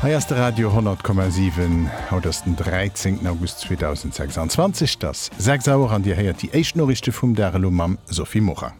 Hei ass de Radio 10,7. Haut ass den 13 August 2026, et ass 6 Auer an Dir héiert déi éischt Noriichte vum Dag elo mam Sophie Morang.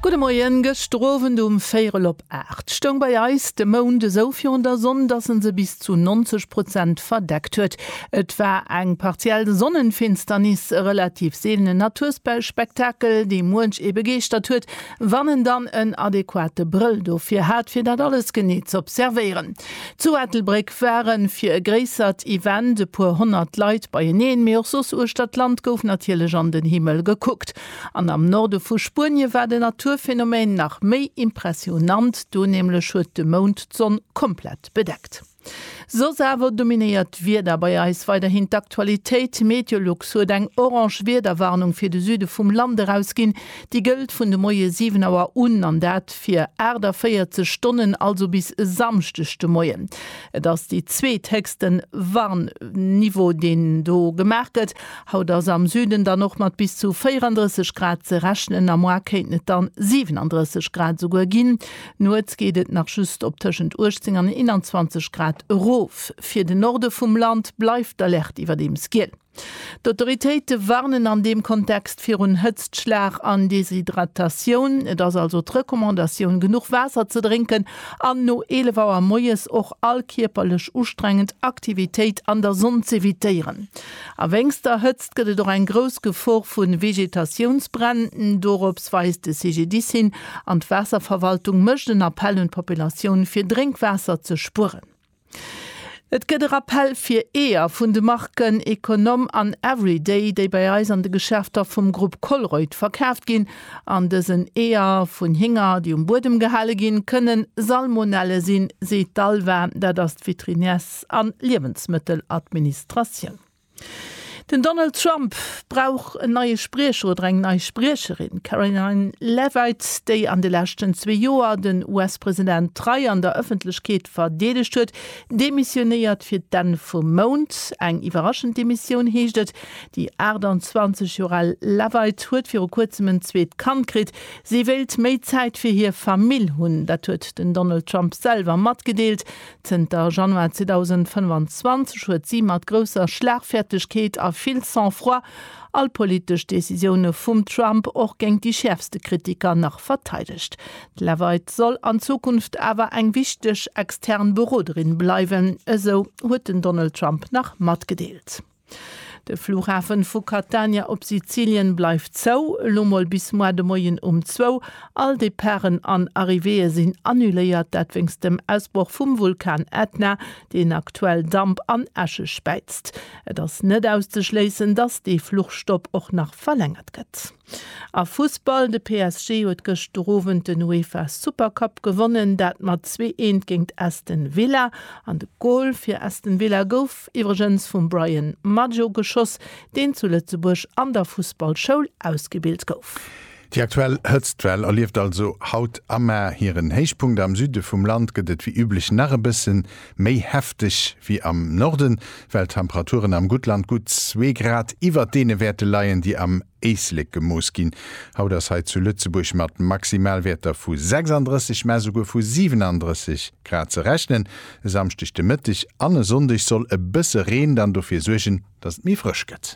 Gudde Moien, Gëschter Owend um véierel op 8 stoung bei eis de Mound esou virun der Sonn, dass en se bis zu 90 Prozent verdeckt huet. Et war eng partiell Sonnenfinsternis, e relativ seelenen Naturspektakel, dee muench ee begeeschtert huet, wann en dann en adequate Brëll dofir hat fir dat alles genee z'observéieren. Zu Ettelbréck ware fir e gréissert Event e puer honnert Leit beieneen, mee och soss uechtert d'Land gouf natierlech an den Himmel gekuckt. An am Norde vu Spuenie war den Naturphänomen nach méi impressionant, do nämlech huet de Mound d'Sonn komplett bedeckt. Soss awer dominéiert d'Wieder bei eis weiderhin d'Aktualitéit. Meteolux huet eng orange Wiederwarnung fir de Süde vum Land erausginn. Déi gëllt vun de Moie 7 Auer un, an dat fir 48 Stonnen, also bis e Samschdeg de Moien. Et ass dee zweethéchste Warnniveau, deen do gemaach gëtt. Haut ass am Süden dann och mat bis zu 34 Grad ze rechnen, am Moie kéinten et dann 37 Grad esouguer ginn. Nuets geet et nach just op tëschent 18 an 21 Grad erof. Fir de Norde vum Land bleift d'Alerte iwwerdeems giel. D'Autoritéite warnen an deem Kontext virun Hëtztschlag an Deshydratatioun. Et ass also d'Recommandatioun, genuch Waasser ze drénken an no 11 Auer moies och all kierperlech ustrengend Aktivitéit an der Sonn z'evitéieren. A wéinst der Hëtzt gëtt et och eng grouss Gefor vu Vegetatiounsbränn. Dorops weist de CGDIS hin an d'Waasserverwaltung mécht en Appell un d'Populatioun, fir Drénkwaasser ze spueren. Et gëtt e Rappell fir Eeër vun de Marken Econom an Everyday, déi bei eis an de Geschäfter vum Grupp Colruyt verkaaft ginn. An dësen Eeër vun Hinger, déi um Buedem gehale ginn, kënne Salmonelle sinn, seet d'ALVA, dat ass d'Veterinärs. Geriicht an Liewensmëtteladministratioun. Den Donald Trump brauch en neie Spriecher oder eng nei Spriecherin. Karoline Leavitt, déi an de leschten zwee Joer den US-President trei an der Ëffentlechkeet verdeedegt huet, demissionéiert fir d'Enn vum Mount. Eng iwwerraschend Demissioun, heescht et. Déi 28 Joer al Leavitt huet viru kuerzem en zweet Kand kritt. Si wéilt méi Zäit fir hir Famill hunn. Dat huet den Donald Trump selwer matgedeelt. Zënter Januar 2025 huet si mat grousser Schlagfäertegkeet a vill Sang-froid all politesch Decisioune vum Trump, och géint déi schäerfste Kritiker, nach verteidegt. D'Leavitt soll an Zukunft awer eng wichteg extern Beroderin bleiwen, esou huet den Donald Trump nach matgedeelt. De Flughafen vu Catania op Sizilien bleift zou, elo mol bis moar de Moien um zwou. All Departen an Arrivéeë sinn annuléiert, dat wéinst dem Ausbroch vum Vulkan Ätna, deen aktuell Damp an Äsche späizt. Et ass net auszeschléissen, dass dee Fluchstopp och nach verlängert gëtt. A Fussball, De PSG huet gëscht de Owend den UEFA Super Cup gewonnen, dat mat zwee Eent géingt Aston Villa. An de Gol fir Aston Villa gouf iwwregens vum Bryan Maggio geschoss, deen zu Lëtzebuerg an der Fussballschoul ausgebilt gouf. Déi aktuell Hëtztwell erlieft also haut am Mar hiren Héichpunkt. Am Süde vum Land gëtt et wéi üblech nach e bësse Méi hefteg wéi am Norden, well d'Temperaturen am Guttland gutt zwee Grad iwwert deene Wäerte leien, déi am Éislek gemooss ginn. Haut ass hei zu Lëtzebuerg mat Maximalwäerter vu 36, mä souguer vu 37 Grad ze rechnen. E Samschdeg de Mëtteg an e Sonndeg soll e bësse Reen dann dofir suergen, dass et méi frësch gëtt.